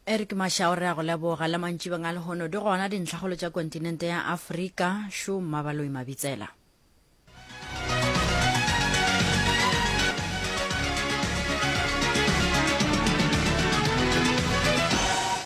eric mashao re a go leboga le mantšibeng a lehono di gona dintlhagolo tša kontinente ya afrika šo mmabaloi mabitsela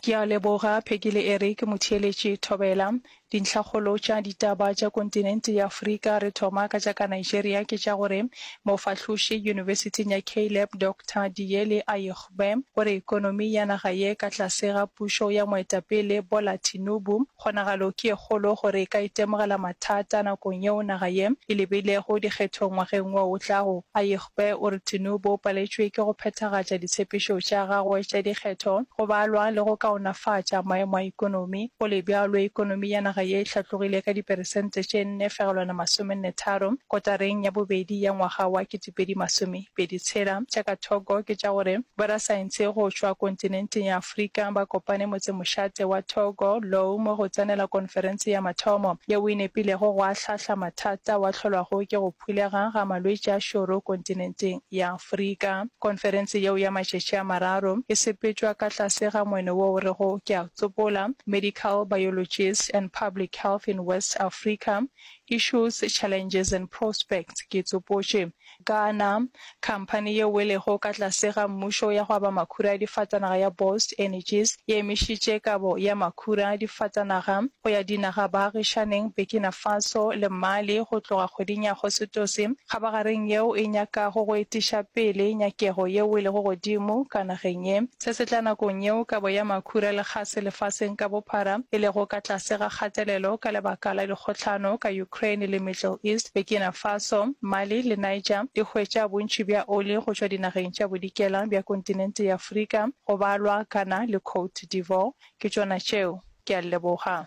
ke a leboga pheki le eric motheeletši thobela Dintlhakgolo tša ditaba tša kontinente ya Afrika, re thoma ka tša ka Nigeria, ke tša gore mofahloši yunibesithing ya Caleb Doctor Diyele Ayigbe o re ekonomi ya naga ye ka tlase ga pušo ya moetapele Bola Tinubu, kgonagalo ke e kgolo gore e ka itemogela mathata nakong yeo naga ye e lebilego dikgethong ngwageng wo o tlago. Ayigbe. Gagwe o re Tinubu o paletšwe ke go phethagatša ditshepišo tša gagwe tša dikgetho, go balwa le go kaonafatša maemo a ekonomi. Go le bjalo, ekonomi ya naga ye e hlatlogile ka diperesente tše nne fegelwana masomenne tharo kotareng ya bobedi ya ngwaga wa ketepedi masome pedi tshela. Tša ka thoko ke tša gore borasaense go tšwa kontinenteng ya Afrika ba kopane motsemošate wa Togo, Loome go tsenela konferense ya mathomo yeo e nepilego go ahlahla mathata wa hlolwago ke go phulega ga malwetši a šoro kontinenteng ya Afrika. Konferense yeo ya matšatši a mararo e sepetšwa ka tlase ga moeno wo o rego Ke a Tsopola, Medical Biologists and Public Health in West Africa, Issues, Challenges and Prospects, Ke Tsopotše, Ghana, Khamphani ye welego ka tlase ga mmušo ya go aba makhura a difatanaga ya Bost Energies e emišitše kabo ya makhura a difatanaga go ya dinaga baagišaneng Burkina Faso le Mali go tloga kgweding ya Agostose, kgabagareng yeo e nyakago go etiša pele nyakego ye welego godimo ka nageng ye. Se se tla nakong yeo kabo ya makhura le kgase lefaseng ka bophara e lego ka tlase ga kgatelelo ka lebaka la dikgohlano ka Ukraine le Middle East, Burkina Faso, Mali le Niger e hwetša bontši bja oli go tšwa dinageng tša bodikela bja kontinente ya Afrika, go balwa Ghana le Cote d'Ivore. Ke tšona tšeo. Ke a leboga.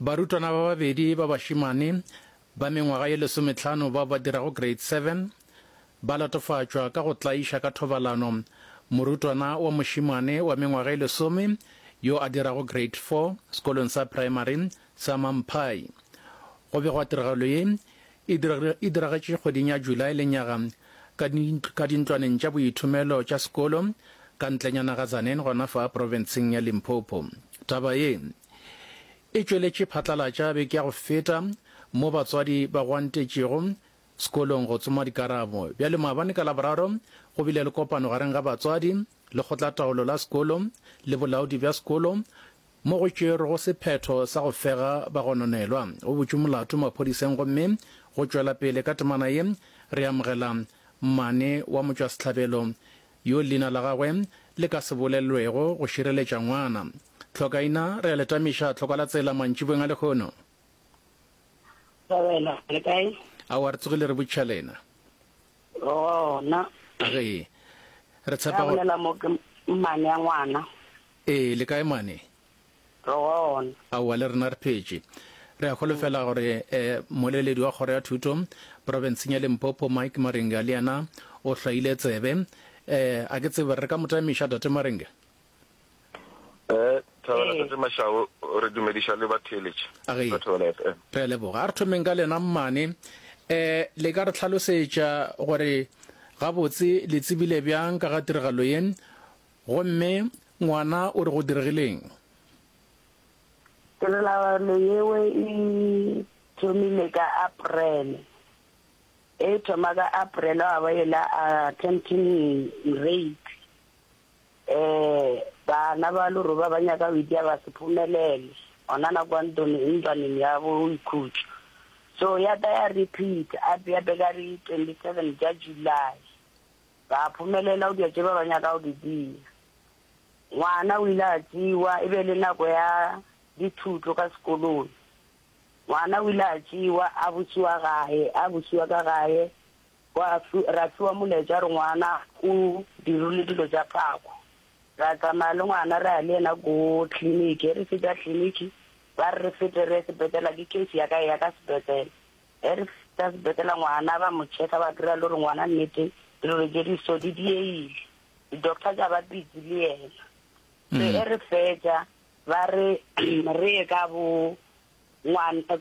Barutwana ba babedi ba bašemane ba mengwaga ye lesometlhano bao ba dirago grade 7 ba latofatšwa ka go tlaiša ka thobalano morutwana wa mošemane wa mengwaga ye lesome yo a dirago grade 4 sekolong sa praemari sa Mamphai. Go begwa tiragalo ye E diragetše kgweding ya July lenyaga ka, ka dintlwaneng tša boithomelo tša sekolo ka ntlenyana ga Tzaneen gona fa profenseng ya Limpopo. Taba ye e tšweletše phatlalatša beke ya go feta mo batswadi ba gwantetšego sekolong go tsoma dikarabo. Bjale maabane ka Laboraro go bile le kopano gareng ga batswadi, lekgotlataolo la sekolo le bolaodi bja sekolo, mo go tšerwego sephetho sa go fega bagononelwa, o butšwe molato maphodiseng gomme go tšwela pele ka temana ye, re amogela mmane wa motšwasehlabelo yo leina la gagwe le ka se bolelelwego go šireletša ngwana. Tlhokaina, re a le tamiša tlhoko la tsela mantšibeng a lehono. Thobela, le kae? Aowa, re tsogile re botšiša lena. Gona. Ge re tshepa gore. Ra bolela mo ke mmane ya ngwana. Ee, le kae mane? Re gona. Aowa, le rena re phetše. Re a holofela gore eh, moleledi wa kgoro ya thuto profenseng ya Limpopo, Mike Maringa, le yena o hlwaile tsebe. Eh, a ke tsebe re ka mo tamiša, Tate Maringa? Eh, Thabela, Ee. Tate Mashau, re dumediša le ba theeletše A ge. ba Thobela FM. Re a leboga. A re thomeng ka lena mmane. Eh, le ka re tlhalosetša gore gabotse le tsebile bjang ka ga tiragalo ye, Gomme ngwana o re go diregileng? Tirelano yeo e thomile ka April. E thoma ka April ga ba yela attempting rape. Bana ba leroba ba nyaka go itia ba se phumelele gona na kwa ntlwaneng ya boikhutšo. So ya tla ya repeat-a gape ka di twenty seven tša July. Ba a phomelela go dira tše ba ba nyaka go di dira. Ngwana o ile a tšewa, e be e le nako ya dithuto ka sekolong. Ngwana o ile a tšewa, a bušiwa gae, a bušiwa ka gae, gwa fi, ra fiwa molaetša gore ngwana o dirilwe dilo tša phako. Ra tsamaya le ngwana ra ya le yena ko kliniki. Ge re fetša kliniki, ba re re fete re ye sepetlele, ke case ya ka e ya ka sepetlele. Ge re fihla sepetlele ngwana ba mo checka ba kry-a e le gore ngwana nnete dilo tše di so di diegile, di-doctor tša ba busy le yena. So ge re fetša ba re re ye ka bo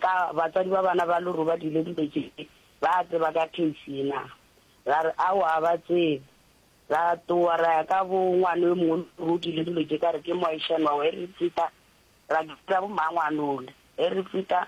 ka batswadi ba bana ba lo re ba dilo dilo tše ba tseba ka case yena, ra re aowa ga ba tsebe. Ra tloga ra ya ka bo ngwana yo mongwe e le gore o dilo dilo tše ka re ke moešana wa ge re fihla ra bitsa bo mmangwanole ge re fihla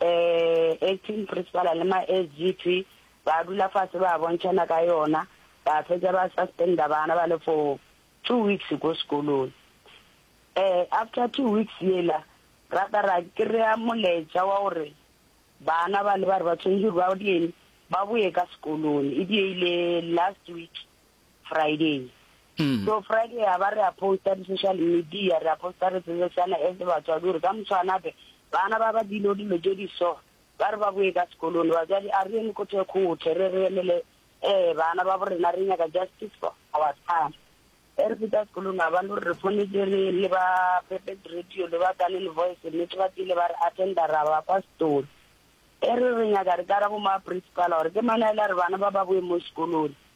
Eh, Acting Principal le ma SGP ba dula fase ba bontšhana ka yona, ba fetša ba suspenda bana ba le for two weeks ko sekolong. Eh, after two weeks yela rata ra kry-a moletša wa gore bana ba le ba re ba tshwanetše gore ba ba boye ka sekolong, e diegile last week. Friday. Mm. So Friday ya ba re a posta di social media re a posta re tsebe sana as batswadi gore ka motshwanape bana ba ba dilo dilo tse di so ba re ba boe ka sekolong batswadi a re eme ko thekgothe re re emele eh bana ba borena re nyaka justice for our son e re feta sekolong a bane gore re fonetse re le ba perfect radio le ba kanene voice nnete ba tsile ba re attenda ra ba kwa setolo e re re nyaka re kara bo ma principal gore ke manaela re bana ba ba boe mo sekolong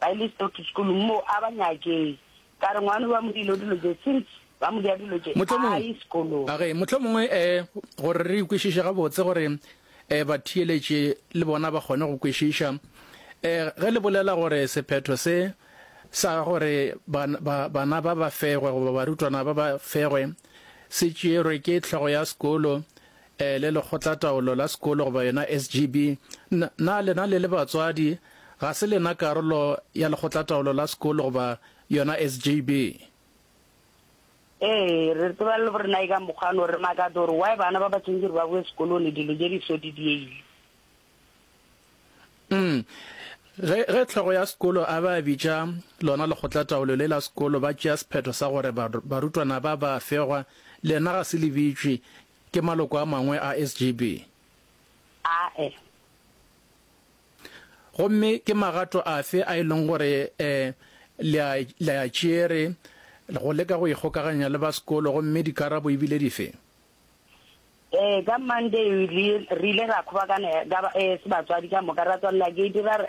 ba ile Stokes School mo a ba nyakeng. Ka re, Ngwano ba mo dilo dilo tše, since ba mo dia dilo tše, a ye sekolong. A re, Mohlomongwe um gore re ikwešiše gabotse, gore um batheeletši le bona ba kgone go kwešiša, um ge le bolela gore sephetho se sa gore bana ba ba fegwe goba barutwana ba ba fegwe se tšeerwe ke hlogo ya sekolo, E le lekgotlataolo la sekolo goba yona SGB, na, na lena le le batswadi, ga se lena karolo ya lekgotlataolo la sekolo goba yona SGB? Ee, re tseba le borena eka mokgwa no re makatsa gore why bana ba ba tsentse gore ba boe sekolone dilo je di so di dieile. Mm. Ge, ge tlhogo ya sekolo a ba bitša lona lekgotlataolo le la sekolo, ba tšea sephetho sa gore barutwana ba ba fegwa, lena ga se le bitšwe, Ke maloko a mangwe a SGB? Ae. Gomme ke magato afe a e leng gore eh, le a, le a tšere go leka go ikgokaganya le ba sekolo gomme dikarabo ebile dife? Eh, ka Monday re ile ra kgobakana eh, ka ba, eh, se batswadi ka moka ra tswalela gate ra re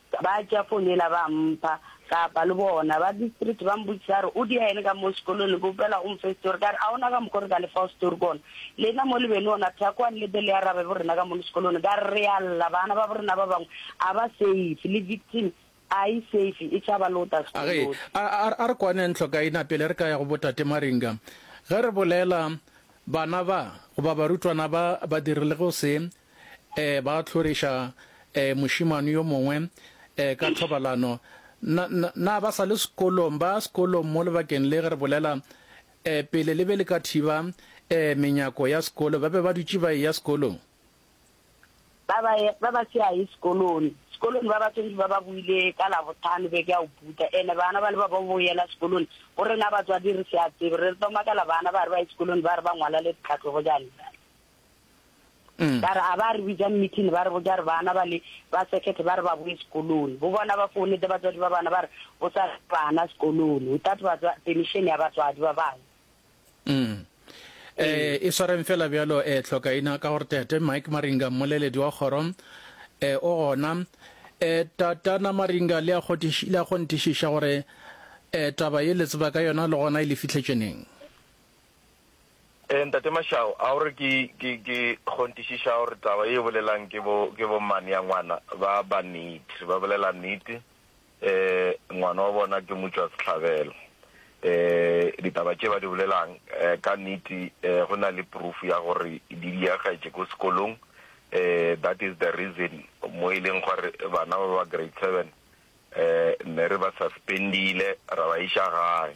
Ba tšea fone yela ba mpha, ka apa le bona. Ba district ba mbotsisa ba re, O dia eng ka mo sekolong? Le kgopela o mfe story. Ka re, A ona ka mokgwa o re ka le fago story gona? Lena mo le be le ona thako a nlete le arabe bo rena ka mono sekolong. Ka re, Re a lla, bana ba bo rena ba bangwe a ba safe, le victim a e safe, e tšhaba le go tla A re, sekolong. A, a, a re kwaneng hlokaina pele re ka ya go bo Tate Maringa. Ge re bolela, bana ba, goba barutwana ba, ba dirile go se, Ee, ba hloriša ee, mošemane yo mongwe ee, ka thobalano. Na, na, na ba sa le sekolong, ba sekolong mo lebakeng le ge re bolela ee, pele le be le ka thiba ee, menyako ya sekolo, ba be ba dutše ba eya sekolong? Ba ba, ba ba se aye sekolong. Sekolong ba ba swantše ba ba boile ka Labohlano beke ya go putha. Ene bana ba le ba ba bo yela sekolong, go rena batswadi re se a tsebe. Re tlo makala bana ba re ba ye sekolong ba re ba ngwala le ditlhahlobo, jane, jane. Ba re a ba re bitsa meeting ba re botša re bana ba le ba circuit ba re ba boe sekolong. Bo bona ba founetse batswadi ba bana ba re go sa bana sekolong without batswa permission ya batswadi ba bangwe. Mm. Eh, e swareng fela bjalo eh tlhoka ina ka gore tete Mike Maringa mmoleledi wa kgoro eh o gona eh tatana Maringa le a kgotiša le a kgontišiša gore eh taba ye le tseba ka yona le gona e le fihletšeneng. Ee, Ntate Mashau, a o re ke, ke, ke kgontišiša gore taba ye e bolelang ke bo, ke bo mmane ya ngwana ba, ba nete, ba bolela nete, ee, ngwana wa bona ke mutšwa sehlabelo. Ee, ditaba tše ba di bolelang, ee, ka nete, ee, go na le proof ya gore di diagaetše ko sekolong, ee, that is the reason mo e leng gore bana ba ba grade seven, ee, ne re ba suspendile, ra ba iša gae.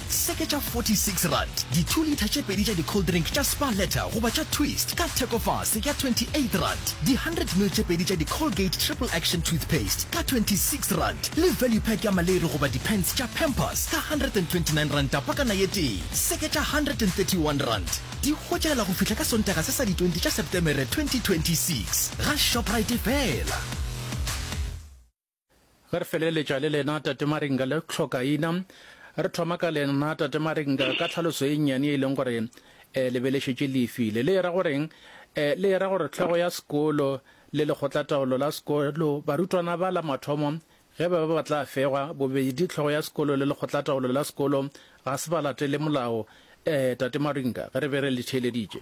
Seke tša 46 rand, di two litre tše pedi tša di cold drink tša Spar Letter goba tša Twist ka thekofase ya 28 rand, di 100 ml tše pedi tša di Colgate Triple Action Toothpaste ka 26 rand, le value pack ya maleri goba di pants tša Pampers ka 129 ranta pakana ye tee. Seke tša 131 rand, di hwetšagela go fihla ka Sontaga se sa di 20 tša Septemere 2026 ga Shoprite fela. Ge re feleletša le lena, Tate Maringa, le hlokaina. Re thoma ka lena, Tate Maringa, ka tlhaloso e nnyane e leng gore eh, le be le šetše le e file. Le era goreng? Eh, le era gore tlhogo ya sekolo le lekgotlataolo la sekolo, barutwana ba la mathomo, ge ba be ba tla fegwa, bobedi tlhogo ya sekolo le lekgotlataolo la sekolo Ga se ba latele molao, eh, Tate Maringa, ge re be re le theeleditše?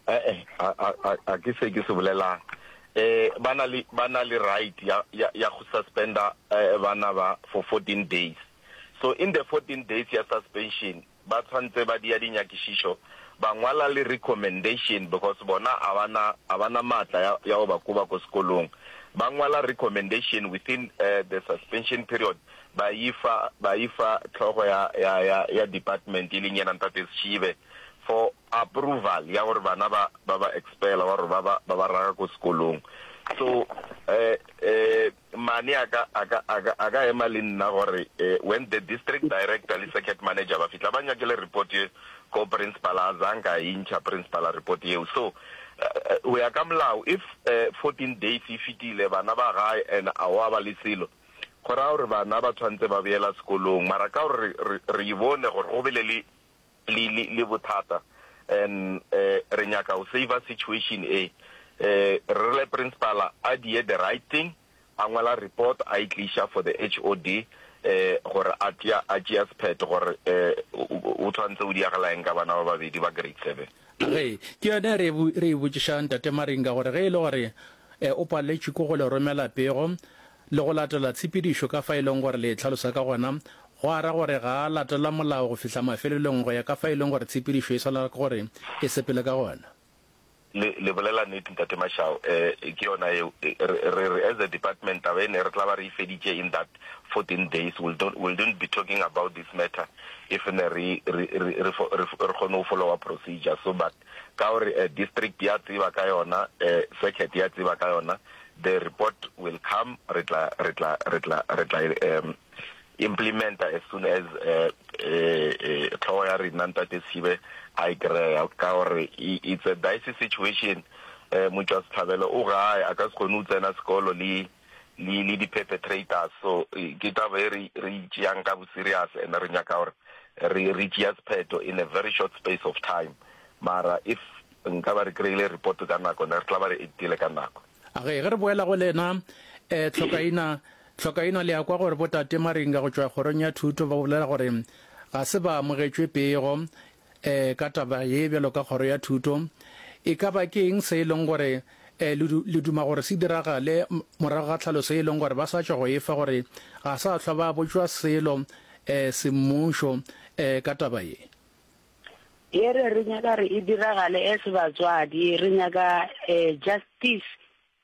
Ee, ga, ga, ga, ga ke se ke se bolelago. Eh, ba na le, ba na le right ya, ya, ya go suspenda eh, bana ba for 14 days. So in the 14 days ya suspension, ba tshwantse ba dia dinyakišišo, ba ngwala le recommendation, because bona ga ba na, ga ba na maatla ya, ya go ba koba ko sekolong. Ba ngwala recommendation within eh, the suspension period, ba yi fa, ba yi fa hlogo ya, ya, ya, ya department, e leng yena Ntate Schive, for approval ya gore bana ba, ba ba expella, wa gore ba ba, ba ba raga ko sekolong. So, eh, eh, mane a ka, a ka, a ka, a ka ema le nna gore, eh, when the district director le circuit manager ba fihla, ba nyakele report ye ko principal, a zang ka yi ntšha principal report yeo. So, eh, go ya ka molao, if, eh, 14 days yi fitile, bana ba gae, and a wa ba le selo, Go raya gore bana ba tshwanetse ba boela sekolong, mara ka gore re, re, re bone gore go bile le, le, le, le bothata and um re nyaka go saver situation e, um re rile principal a die the right thing, a ngwala report a e tliša for the HOD um gore a tšea, a tšea sephetho gore um o, o, o tshwanetse o diragala eng ka bana ba babedi ba grade seven. Ge, ke yona e re, re e botšiša Ntate Maringa gore ge e le gore e, o paletšwe ke go le romela pego le go latela tshepedišo ka fa e leng gore le e tlhalosa ka gona, gwa ra gore ga a latela molao go fihla mafelelong go ya ka fa e leng gore tshepedišo e swanela ke gore e sepele ka gona. Le, le bolela nnete Ntate Mashau. E, ke yona eo. E, re, re, as a department, taba ena e re tla ba re e feditše in that. next 14 days we'll don't we'll don't be talking about this matter if ne re re re re fo- re fo- re kgone go followa procedure so but ka gore eh, district ya tseba ka yona eh, circuit ya tseba ka yona the report will come re tla re tla re tla re tla um, implementa as soon as eh, eh, eh, tlhogo ya rena ntate Sibe a e kry-a ka gore i- it's a dicey situation eh motšwa setlhabelo o gae a ka se kgone o tsena sekolo le le, le di-perpetrators. So ke taba e re, re e tšeang ka bo-serious and re nyaka gore re, re tšea sephetho in a very short space of time. Mara if nka ba re kry-ile report ka nako, ne re tla ba re act-ile ka nako. A re, ge re boela go lena, eh, Tlhokaina, Tlhokaina, le a kwa gore bo-Tate Maringa go tšwa Kgorong ya Thuto ba bolela gore ga se ba amogetšwe pego, E, ka taba ye bjalo ka Kgoro ya Thuto, e ka ba ke eng se e leng gore e, le, le duma gore se diragale morago ga tlhaloso e leng gore ba sa tšwa go e fa gore ga sa hlwa ba botšwa selo e, semmušo e, ka taba ye? Ye re, re nyaka gore e diragale as batswadi, re nyaka e, justice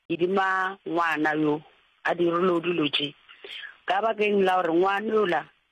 edima ngwana yo a direlwego dilo tše. Ka bakeng la gore ngwana yola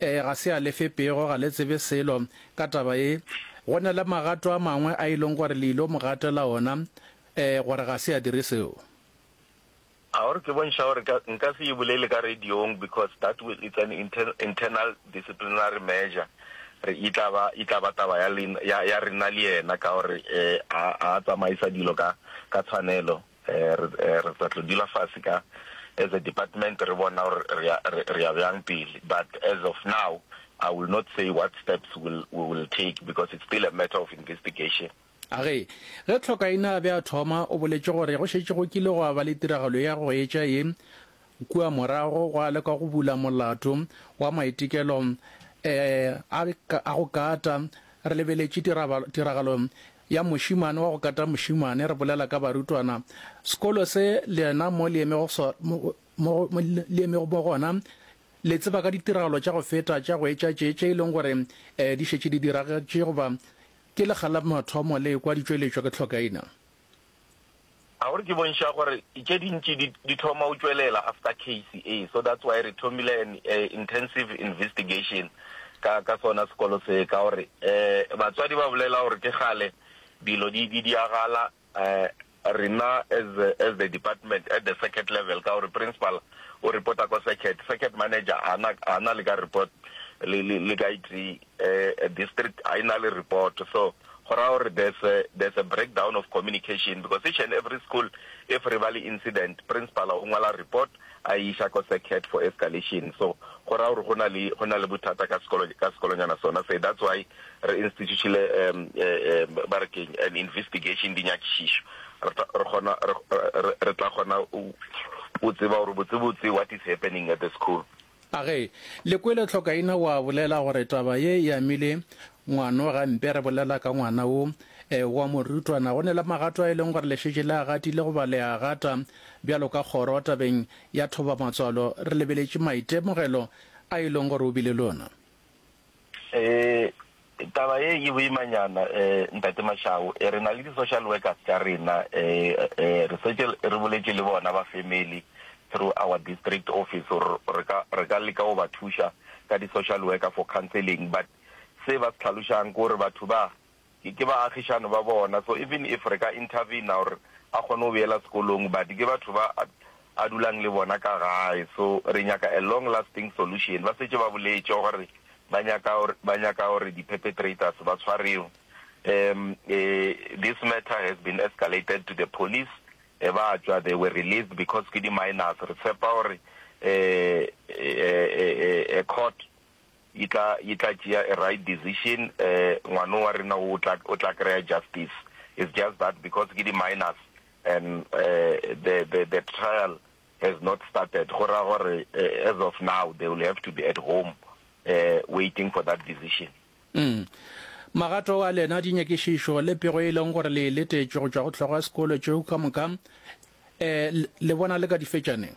Ee, ga se a lefe pego, ga le tsebe selo ka taba ye. Go na le magato a mangwe a e leng gore le ile mo gatela ona, ee, gore ga se a dire seo. A o re ke bontšha gore ka, nka se e bolele ka radiong because that will, it's an inter, internal disciplinary measure. Re, e tla ba, e tla ba taba ya lena, ya, ya rena le yena ka gore, ee, a, a tsamaisa dilo ka, ka tshwanelo. Re, re tla tlo dula fase ka, as a department re bona gore re ya, re, re ya bjang pele. But as of now, I will not say what steps will, we will take because it's still a matter of investigation. A re, ge Tlhokaina a be a thoma, o boletše gore go šetše go kile gwa ba le tiragalo ya go etša ye, kua morago gwa lekwa go bula molato wa maitekelo, eh, a, a go kata. Re lebeletše tiraba, tiragalo Ya mošemane wa go kata mošemane, re bolela ka barutwana. Sekolo se, lena mo le emego so, mo, mo, mo le emego mo gona, le tseba ka ditiragalo tša go feta tša go etša tše, tše e leng gore eh, di šetše di diragetše, goba ke lekga la mathomo le ekwa di tšweletšwa ke tlhokaina. A gore ke bontšha gore tše dintši di di thoma go tšwelela after case e, so that's why re thomile an eh, intensive investigation ka ka sona sekolo se ka gore eh batswadi ba bolela gore ke gale dilo di di diagala eh rena as the, as the department at the circuit level ka gore principal o reporta ko circuit circuit manager ana ana le ka report le le, le ka itse a district a e na le report so go raya gore there's a, there's a breakdown of communication because each and every school if re ba le incident principal o ngwala report a e iša ko secret for escalation so go raya gore go na le go na le bothata ka sekolo ka sekolonyana sona se that's why re institutile um, uh, um, ba re keng an investigation dinyakišišo re tla- re kgona re- re- re tla kgona o o tseba gore botsebotse what is happening at the school A Ge le kwele Hlokaina wa bolela gore taba ye e amile ngwano gampe, re bolela ka ngwana wo e, wa morutwana. Go ne le magato a e leng gore le šetše le a gatile goba le a gata. Bjalo ka kgoro tabeng ya thoba matswalo, re lebeletše maitemogelo a e leng gore o bile le ona. Eh, taba ye e boimanyana eh, ntate Mashau. Eh, re na le di-social workers tša rena eh, eh, re setse re boletše le bona ba family through our district office gore re ka re ka leka go ba thuša ka di-social worker for counseling but se ba se tlhalošang ke gore batho ba Ke ke ba agišani ba bona so even if re ka intervene or a kgone go boela sekolong but ke batho ba a dulang le bona ka gae so re nyaka a long lasting solution. Ba setše ba boletše gore ba nyaka ba nyaka gore di perpetrators ba tshwarewe um this matter has been escalated to the police um ba tšwa they were released because ke di minors re tshepa gore um a court Yi tla, yi tla tšea a right decision, um ngwano wa rena wo o tla, o tla kry-a justice. It's just that because ke di-minors and um the, the, the trial has not started, go ra gore as of now they will have to be at home um waiting for that decision. Umm. Magato a lena a dinyakišišo le pego e leng gore le e letetše go tšwa go hlogo ya sekolo tšeo ka moka, um le bona le ka di fetša neng?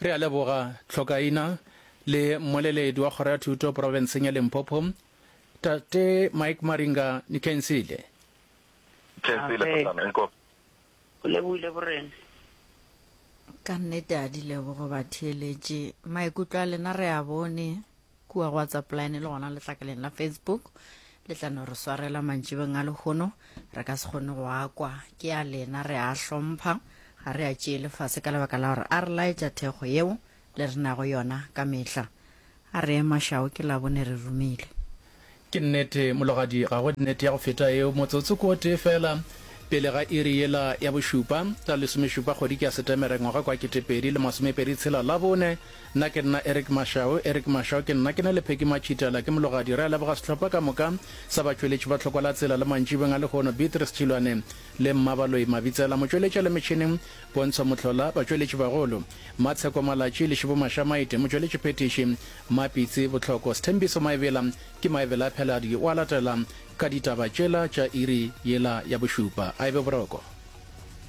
Re a leboga Tlhokaina le mmoleledi wa Kgoro ya Thuto Porofenseng ya Limpopo, Tate Mike Maringa Nikensile. Kensile, Kgotsana, nko. Go lebohile Borena. Ka nnete a dilebogo batheeletši. Maikutlo a lena re a bone. kua go whatsapp line le gona letlakaleng la facebook le tla no re swarela mantšibeng a lehono re ka se kgone go a kwa ke a lena re a hlompha ga re a tšee lefase ka lebaka la gore a re laetša thekgo yeo le re nago yona ka mehla a re emašao ke labone re rumile Ke nnete, mologadi, ga go nnete ya go feta yeo. Motsotso ko tee feela pele ga iri yela ya bošupa, ka lesomešupa kgwediki ya Setemere ngwaga kwa ketepedi le masomepedi tshela, Labone, nna ke nna Eric Mashau, Eric Mashau ke nna, ke na le Peggy Machitala, ke mologadi, re a leboga sehlopha ka moka sa batšweletši ba Tlhoko la Tsela le mantšibeng a lehono, Beatrice Tšhilwane le Mmabaloyi Mabitsela, motšweletši a le metšhineng, Pontsho Mohlola, batšweletši bagolo, Mmatsheko Malatši le Šibo Mashamaite, motšweletši phethiši, Mapitsi, Bohloko, Sthembiso Maebela ke Maebela a Pheladi o a latela ka ditaba tšela tša iri yela ya bošupa. A ebe boroko.